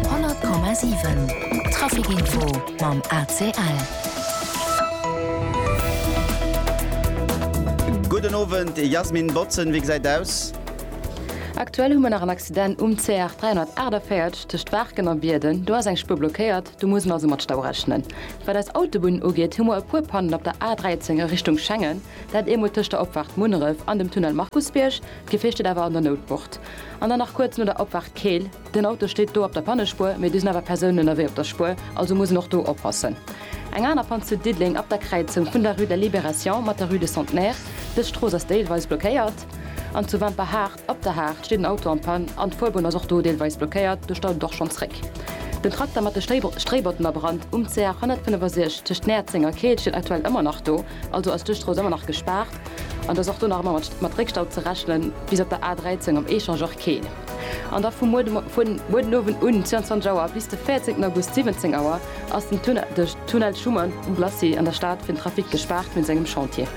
100,7 Trafic Info mam ACL. Gudden Owend Jasmin Botzen, wéi gesäit aus? Aktuell hu mer nach en Accident um CR 348 tëscht Waarken a Bierden. Do ass eng Spuer blockéiert, do muss een also mat Stau rechnen. Wat eis Autobunnen ugeet, hu mer e puer Pannen op der A 13 a Richtung Schengen, dat eemol tëscht der Opfaart Munneref an dem Tunnel Markusbierg. D'Gefier steet awer an der Noutbucht. An dann nach kuerz no der Opfaart Keel. Den Auto steet do op der Pannespuer, mee do sinn awer Persounen ënnerwee op der Spuer, also muss en och do oppassen. Eng aner Pann zu Diddeleng ab der Kräizung vun der Rue de la Libération mat der Rue de Centenaire. Dës Strooss ass deelweis blockéiert. An zu Wemperhaart ab der Haart steet en Auto am Pann an d'Fuerbunn ass och do deelweis blockéiert. Do staut et och schonn zréck. Den Trakter mat de Stréibotten a Brand um CR 165 tëscht Näerzeng a Keel steet aktuell ëmmer nach do. Also ass d'Ueschstrooss ëmmer nach gespaart an et ass och do nach ëmmer mat Réckstau ze rechnen, bis op der A13 am Echangeur Keel. An da vu muer den Owend un, 22 Auer, bis de 14 August, 17 Auer, ass den Tunnel Schuman um Glacis an der Stad fir den Trafic gespaart wéinst engem Chantier.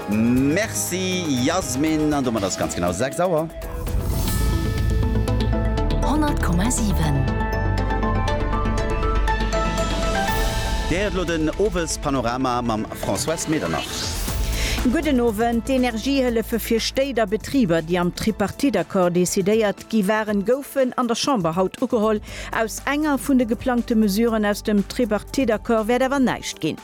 Merci Yasmin, an domat ass et ganz genau 6 Auer. Dir héiert elo den Owespanorama mam Françoise Medernach. Gudden Owend. D'Energiehëllefe fir Stéit a Betriber, déi am Tripartite-Accord decidéiert gi waren, goufen an der Chamber haut ugeholl. Aus enger vun de geplangte Mesuren aus dem Tripartite-Accord wäert awer näischt ginn.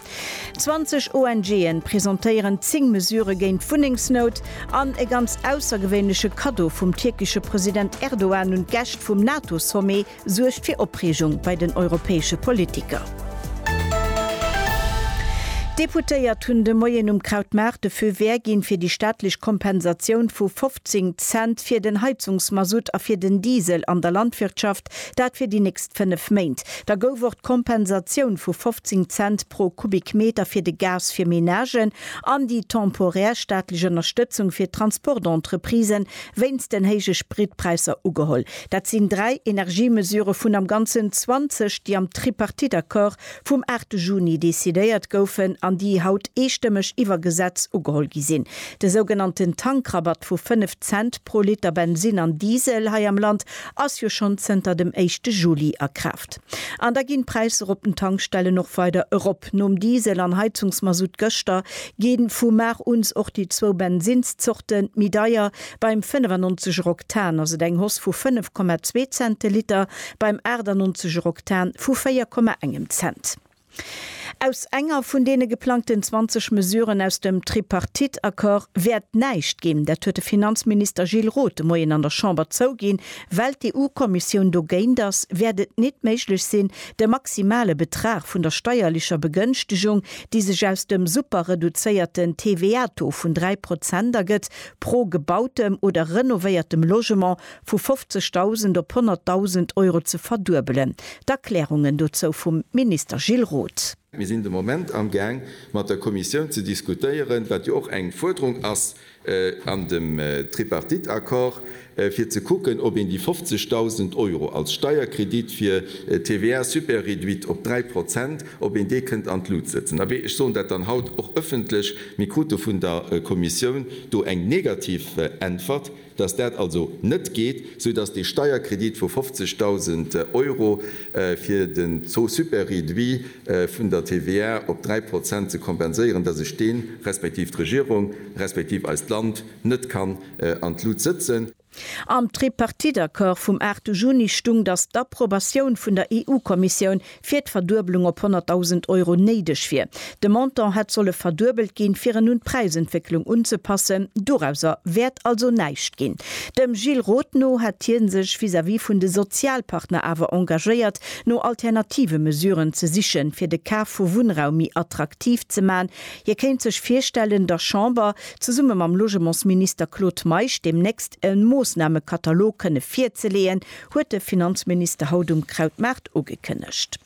20 ONGen presentéieren 10 Mesure géint d'Wunnengsnout an e ganz aussergewéinleche Kaddo vum tierkesche President Erdogan un d'Gäscht vum NATO-Sommet suergt fir Opreegung bei den europäesche Politiker. D'Deputéiert hunn de Moien um Krautmaart de Feu vert ginn, fir déi staatlech Kompensatioun vu 15 Cent fir den Heizungsmasutt a fir den Diesel an der Landwirtschaft Markt. Dat fir déi nächst fënnef Méint. Da gouf och d'Kompensatioun vu 15 Cent pro Kubikmeter fir de Gas fir Menagen an déi temporär staatlech Ënnerstëtzung fir d'Transportentreprise wéinst den héije Spritpräisser ugeholl. Dat sinn dräi Energiemesure vun am Ganzen 20, déi am Tripartite-Accord vum 8 Juni decidéiert goufen an déi haut eestëmmeg iwwer Gesetz ugeholl gi sinn. De sougenannten Tankrabatt vu 5 Cent pro Liter Bensin an Diesel hei am Land Ass jo schonn zënter dem éischte Juli a Kraaft. An da ginn d'Präisser op den Tankstellen och weider erop. Nom Diesel an Heizungsmasutt gëschter ginn vu mar uns och déi zwou Bensinnszorten méi deier. Beim 95 er Oktan ass et eng Hoss vu 5,2 Cent de Liter, beim 98 er Oktan vu 4,1 em Cent. Aus enger vun deene geplangten 20 Mesuren aus dem Tripartite-Accord wäert näischt ginn. Dat huet de Finanzminister Gilles Roth de Moien an der Chamber zouginn. Well d'EU-Kommissioun dogéint ass, wäert et nit méiglech sinn, de maximale Betrag vun der steierlecher Begënschtegung, déi sech aus dem super-reduzéierten TVA-Taux vun 3 Prozent ergëtt, pro gebautem oder renovéiertem Logement vu 50.000 op 100.000 Euro ze verduebelen. D'Erklärungen dozou vum Minister Gilles Roth. Mir sinn de Moment amgaang, mat der Kommissioun ze diskutéieren, wat jo och eng Fuerderung ass an dem Tripartite-Accord, fir ze kucken, ob een déi 50.000 Euro als Steierkredit fir TVA super-réduite op 3 Prozent, ob een dee kënnt an d'Lut sëtzen. Abee, ech soen dat dann haut och öffentlech, Mir krute vun der Kommissioun do eng negativ Äntwert. dass dat also net geet, sou dass dee Steierkredit vu 50.000 Euro fir den Taux super-réduit vun der TVA op dräi Prozent ze kompenséieren, dass ech deen, respektiv d'Regierung, respektiv eist Land net kann an d'Lut sëtzen. Am Tripartite-Accord vum 8 Juni stung, dass d'Approbatioun vun der EU-Kommissioun fir d'Verduebelung op 100.000 Euro néideg wier. De Montant hätt solle verduebelt ginn, fir en un d'Präisentwécklung unzepassen. Dorauser wäert also näischt ginn. Dem Gilles Roth no hätt hie sech vis-à-vis vun de Sozialpartner awer engagéiert, no alternative Mesuren ze sichen, fir de Kaf vu Wunnraum méi attraktiv ze man. Hie kéint sech virstellen, der Chamber, zesumme mam Logementsminister Claude Meisch, deemnächst e Moossnamekatalog kënne virzeleeën, huet de Finanzminister haut um Krautmaart ugekënnegt.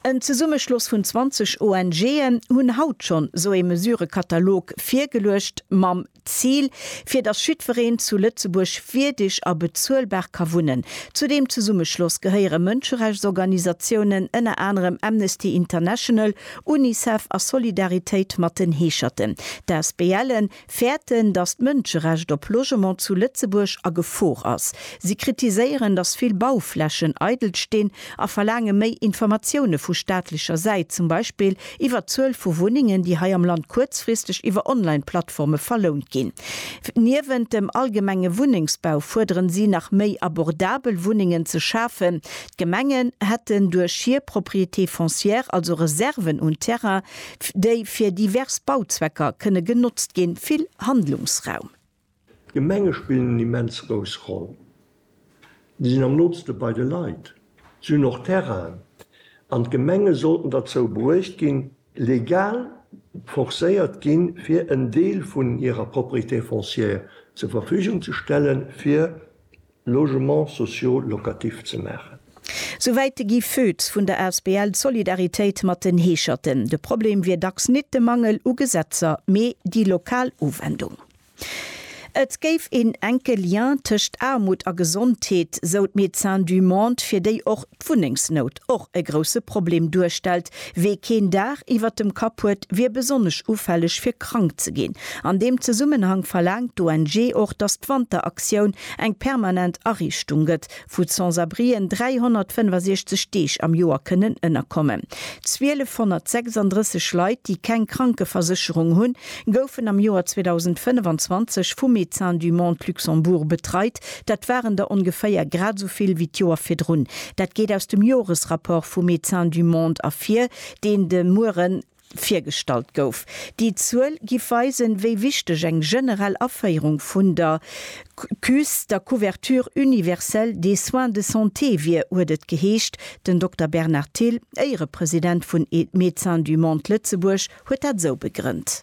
En Zesummeschloss vun 20 ONGen hunn haut schonn sou ee Mesurëkatalog virgeluecht, mam Zil, fir datt jiddwereen zu Lëtzebuerg wierdeg a bezuelbar ka wunnen. Zu deem Zesummeschloss gehéiere Mënscherechtsorganisatiounen, ënner anerem Amnesty International, Unicef a Solidaritéit mat den Heescherten. D'ASBLen fäerten, datt d'Mënscherecht op Logement zu Lëtzebuerg a Gefor ass. Si kritiséieren, datt vill Bauflächen eidel stinn a verlaange méi Informatioune vu staatlecher Säit, zum Beispill iwwer d'Zuel vu Wunnengen, déi hei am Land kuerzfristeg iwwer Online-Plattforme verlount ginn. Niewent dem allgemenge Wunnengsbau fuerderen si nach méi abordabel Wunnengen ze schafen. D'Gemengen hätten duerch hir Propriétés foncières, also Reserven un Terrain, déi fir divers Bauzwecker kënne genotzt ginn, vill Handlungsraum. D'Gemenge spillen eng immens grouss Roll. Si sinn am nootste bei de Leit. Si hunn och Terrainen. An d'Gemenge sollten derzou bruecht ginn, legal forcéiert ginn, fir en Deel vun hirer Propriété foncière zur Verfügung ze stellen, fir Logements sociaux locatifs ze maachen. Souwäit de Guy Foetz vun der asbl Solidarität mat den Heescherten. De Problem wier dacks nit de Mangel u Gesetzer, mee déi lokal Uwendung. Et géif een enke Lien tëscht Aarmut a Gesondheet, sou d'Médecins du Monde, fir déi och d'Wunnengsnout och e grousse Problem duerstellt. Wee keen Daach iwwert dem Kapp huet, wier besonnesch ufälleg fir krank ze ginn. An deem Zesummenhang verlaangt d'ONG och, datt d'Wanteraktioun eng permanent Ariichtung gëtt, wou d'Sans-abrien 365 Deeg am Joer kënnen ënnerkommen. 1.236 Leit, déi keng Krankeversécherung hunn, goufen am Joer 2025 vu Médecins du Monde Luxembourg betreit, Dat waren der ongeféier grad esou vill wéi d'Joer virdrun. Dat geet aus dem Joresrapport vu Médecins du Monde ervir, deen de Muere virgestallt gouf. Déi Zuel giff weisen, wéi wichteg eng generell Aféierung vun der CUS, der Couverture universelle des soins de santé, wier, huet et geheescht. Den Dokter Bernard Thill, Éierepresident vun Médecins du Monde Lëtzebuerg, huet dat esou begrënnt.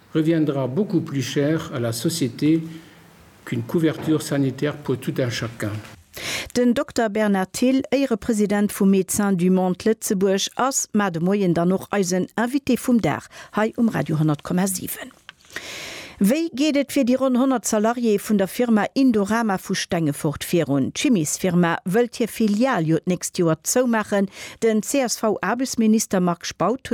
reviendra beaucoup plus cher à la société qu'une couverture sanitaire pour tout un chacun. Den Dokter Bernard Thill, Éierepresident vu Médecins du Monde Lëtzebuerg, ass mar de Moien dann och eisen Invité vum Dag hei um Radio 10,7. Wéi geet et fir déi ronn 100 Salariéeë vun der Firma Indorama vu Stengefort virun? D'Chimiesfirma wëllt hir Filial jo d'nächst Joer zoumaachen, Den CSV-Aarbechtsminister Marc Spautz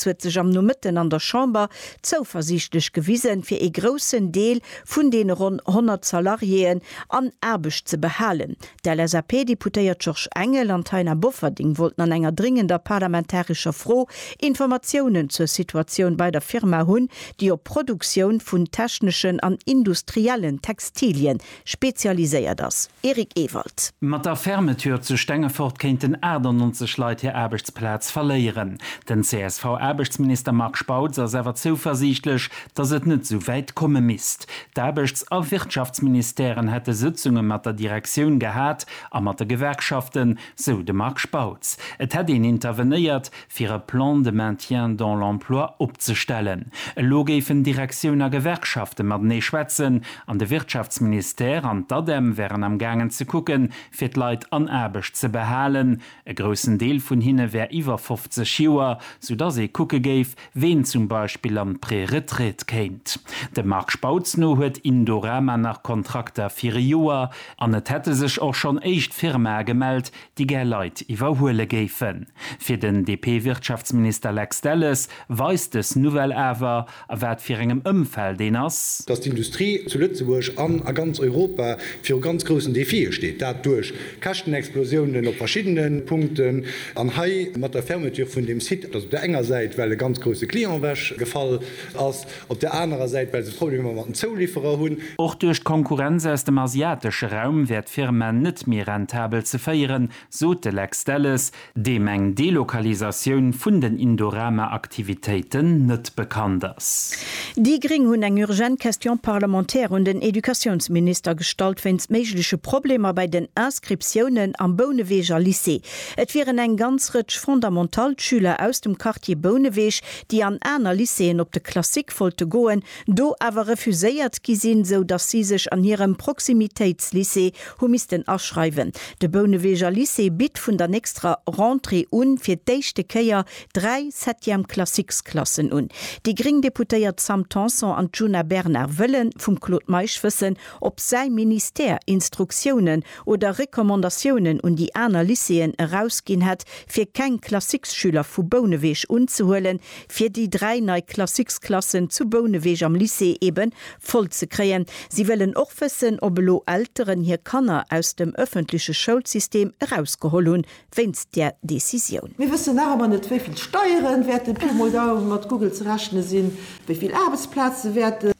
huet sech am Nomëtten an der Chamber zouversiichtlech gewisen, fir ee groussen Deel vun deene ronn 100 Salariéeën an Aarbecht ze behalen. D'LSAP-Deputéiert Georges Engel an d'Taina Bofferding wollten an enger dringender parlamentarescher Fro Informatiounen zur Situatioun bei der Firma hunn, déi op Produktioun vun techneschen an industriellen Textilien spezialiséiert ass, Eric Ewald. Mat der Fermeture zu Stengefort kéinten 98 Leit hir Aarbechtsplaz verléieren. Den CSV-Aarbechtsminister Marc Spautz ass awer zouversiichtlech, datt et net esou wäit komme misst. D'Aarbechts a Wirtschaftsministèren hätte Sëtzunge mat der Direktioun gehat a mat de Gewerkschaften, sou de Marc Spautz. Et hätt een intervenéiert, fir e Plan de maintien dans l'emploi opzestellen. Elo géifen Direktioun a Gewerkschafte matenee schwätzen an de Wirtschaftsministère an d'ADEM wären am gaangen ze kucke fir d'Leit an Aarbecht ze behalen. E groussen Deel vun hinne wär iwwer 50 Joer, soudass ee kucke géif, ween zum Beispill an d'Préretraite kéint. Dem Marc Spautz no huet Indorama nach Kontrakter fir e Joer an et hätte sech och schonn éischt Firmae gemellt, déi gär Leit iwwerhuele géifen. Fir den DP-Wirtschaftsminister Lex Delles weist dës Nouvelle awer, a wat fir engem Ëmfeld een ass. Datt d'Industrie zu Lëtzebuerg an a ganz Europa viru ganz groussen Defie steet. Dat duerch Käschtenexplosiounen op verschiddene Punkten. An hei mat der Fermeture vun deem Site, datt op der enger Säit well e ganz grousse Client ewech gefall ass, Op der anerer Säit, well se Problemer mat den Zoulifferer hunn. Och duerch d'Konkurrenz aus dem asiatesche Raum wär d'Firma net méi rentabel ze féieren, sot de Lex Delles, deem eng Delokalisatioun vun den Indorama-Aktivitéiten net bekannt ass. Déi Gréng hunn eng urgent Question parlementaire un den Educatiounsminister gestallt wéinst méigleche Problemer bei den Inscriptiounen am Bouneweger Lycée. Et wieren eng ganz Rëtsch Fondamental-Schüler aus dem Quartier Bouneweg, déi an aner Lycéeën op de Classique wollte goen, do awer refuséiert gi sinn, sou datt si sech an hirem Proximitéitslycée hu missten aschreiwen. De Bouneweger Lycée bitt vun der nächster Rentrée u fir d'éischte Kéier dräi Septième Classiques Klassen un. Déi gréng Deputéiert Sam Tanson an d'Djuna Bernard wëlle vum Claude Meisch wëssen, ob säi Ministère Instruktiounen oder Recommandatiounen un déi aner Lycéeën erausginn hätt, fir keng Classiques-Schüler vu Bouneweg unzehuelen, fir déi dräi nei Classiques-Klassen zu Bouneweg am Lycée eebe voll ze kréien. Si wëllen och wëssen, ob elo Elteren hir Kanner aus dem ëffentleche Schoulsystem erausgeholl hunn, wéinst där Decisioun. Mir wëssen nach ëmmer net, wéi vill Steieren wäerten Pi mol Daum mat Google ze rechne sinn, wéi vill Aarbechtsplaze wäerten.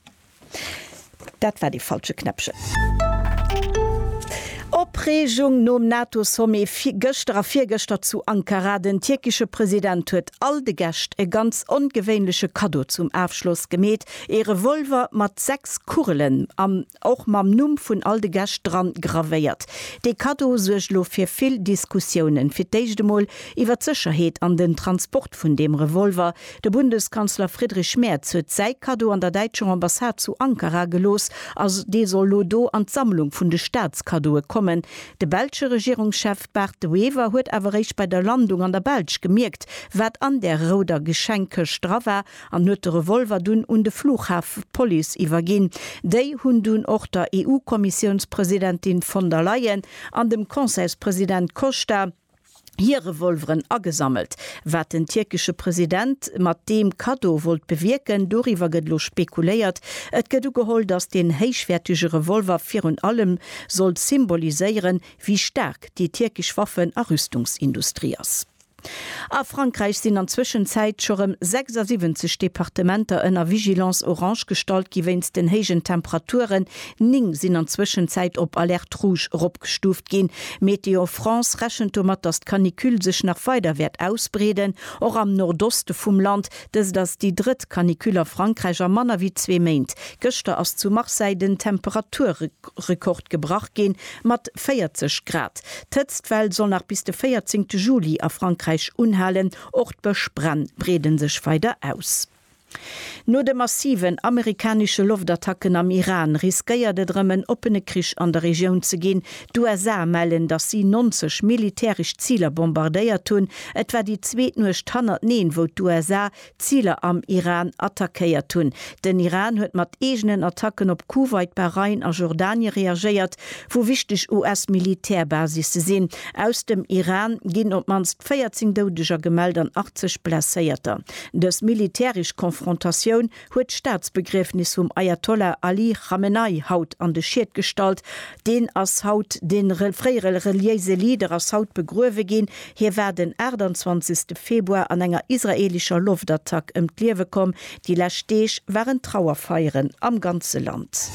Dat war dee falsche Knäppchen. Opreegung nom NATO-Sommet gëschter a virgëschter zu Ankara. Den tierkesche President huet all de Gäscht e ganz ongewéinleche Kaddo zum Afschloss gemeet, ee Revolver mat sechs Kugelen an och mam Numm vun all de Gäscht dran gravéiert. Dee Kaddo suergt elo fir vill Diskussiounen, fir d'éischt emol iwwer d'Sécherheet an den Transport vun deem Revolver, De Bundeskanzler Friedrich Merz huet säi Kaddo an der däitscher Ambassade zu Ankara gelooss a dee soll lo do an d'Sammlung vun de Staatskaddoe kommen. De belsche Regierungschef Bart De Wever huet awer eréischt bei der Landung an der Belsch gemierkt, wat an där rouder Geschenkkëscht dra war an huet de Revolver dunn un de Flughafepolice iwwerginn. Déi hunn dunn och der EU-Kommissiounspresidentin von der Leyen an dem Conseilspresident Costa, hir Revolveren agesammelt. Wat den tierkesche President mat deem Kaddo wollt bewierken, doriwwer gëtt elo spekuléiert. Et gëtt ugeholl, datt deen héichwäertege Revolver virun allem soll symboliséieren, wéi staark déi tierkesch Waffen a Rüstungsindustrie ass. A Frankräich sinn an Zwëschenzäit scho rëm 76 Departementer ënner Vigilance orange gestallt gi wéinst den héijen Temperaturen, Ning sinn an Zwëschenzäit op Alerte Rouge eropgestuuft ginn. Météo France rechent domat, datt d'Canicule sech nach weider wäert ausbreeden, och am Nordoste vum Land. Dëst ass déi drëtt Canicule a Frankräich a manner wéi zwee Méint. Gëschter ass zu Marseille den Temperaturrekord gebrach ginn, mat 40 Grad. D'Hëtztwell soll nach bis de 14 Juli a Frankräich unhalen. Och d'Bëschbränn breede sech weider aus. No de massiven amerikanesche Loftattacken am Iran riskéiert et erëm en oppene Krich an der Regioun ze ginn. D'USA mellen, datt si 90 militäresch Ziler bombardéiert hunn. Et war déi zweet Nuecht hannerteneen, wou d'USA Ziler am Iran attackéiert hunn. Den Iran huet mat eegenen Attacken op Kuwait, Bahrain a Jordanie reagéiert, wou wichteg US-Militärbasisse sinn. Aus dem Iran ginn op d'mannst 14 Doudeger gemellt an 80 Blesséierter. Dës militäresch Konfrontatioun huet d'Staatsbegriefnis vum Ajatollah Ali Chamenei haut an de Schied gestallt. Deen ass haut, de fréiere reliéise Leader ass haut begruewe ginn. Hie war den 28 Februar an enger israeelescher Loftattack ëm d'Liewe komm. Déi lescht Deeg waren Trauerfeieren am ganze Land.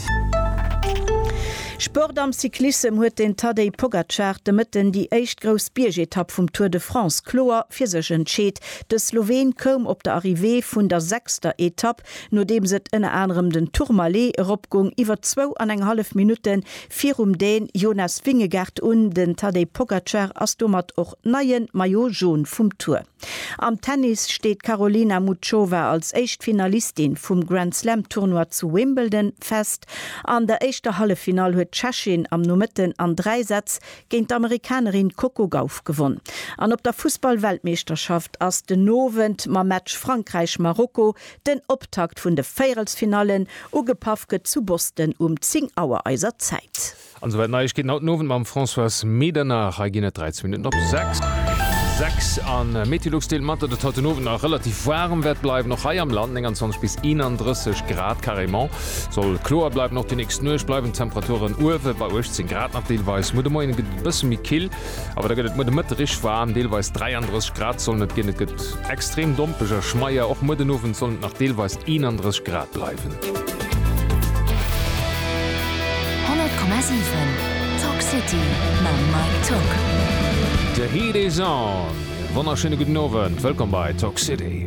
Sport Am Cyclissem huet den Tadej Pogacar de Mëtten déi éischt grouss Biergetapp vum Tour de France kloer fir sech entscheet. De Sloween koum op der Arrivée vun der sechster Etapp, nodeems et ënner anerem den Tourmalet eropgung, iwwer zwou an eng hallef Minutte virum Dän Jonas Vingegaard un. Den Tadej Pogacar ass domat och neie Maillot Jaune vum Tour. Am Tennis steet d'Karolina Muchova als éischt Finalistin vum Grand Slam Tournoi zu Wimbledon fest. An der éischter Halleffinall huet d'Tschechin am Nomëtten an dräi Sätz géint d'Amerikanerin Coco Gauff gewonn an op der Fussball-Weltmeeschterschaft ass den Owend mam Match Frankräich-Marokko den Optakt vun de Véierelsfinallen. Ugepaff gëtt zu Boston um 10 Auer eiser Zäit. An souwäit Neiegkeeten haut den Owend mam Françoise Medernach. Hei ginn et 13 Minutten op 6. 6 a Meteolux deelt mat, datt et haut den Owend nach relativ waarem wäert bleiwen, och hei am Land 29 bis 31 Grad carrément. Soll kloer bleiwen, och déi nächst Nuecht bleiwen d'Temperaturen uewe bei 18 Grad mat deelweis muer. De Moien gëtt et e bësse méi kill, awer da gëtt et muer de Mëtte rich waarm, deelweis 33 Grad sollen et ginn. Et gëtt extrem dompeg a schmeier, och muer den Owend sollen et nach deelweis 31 Grad bleiwen. 100,7 Talk City mam Mike Tuck. De Heat is on! Wonnerschéine gudden Owend, wëllkomm bei Talk City.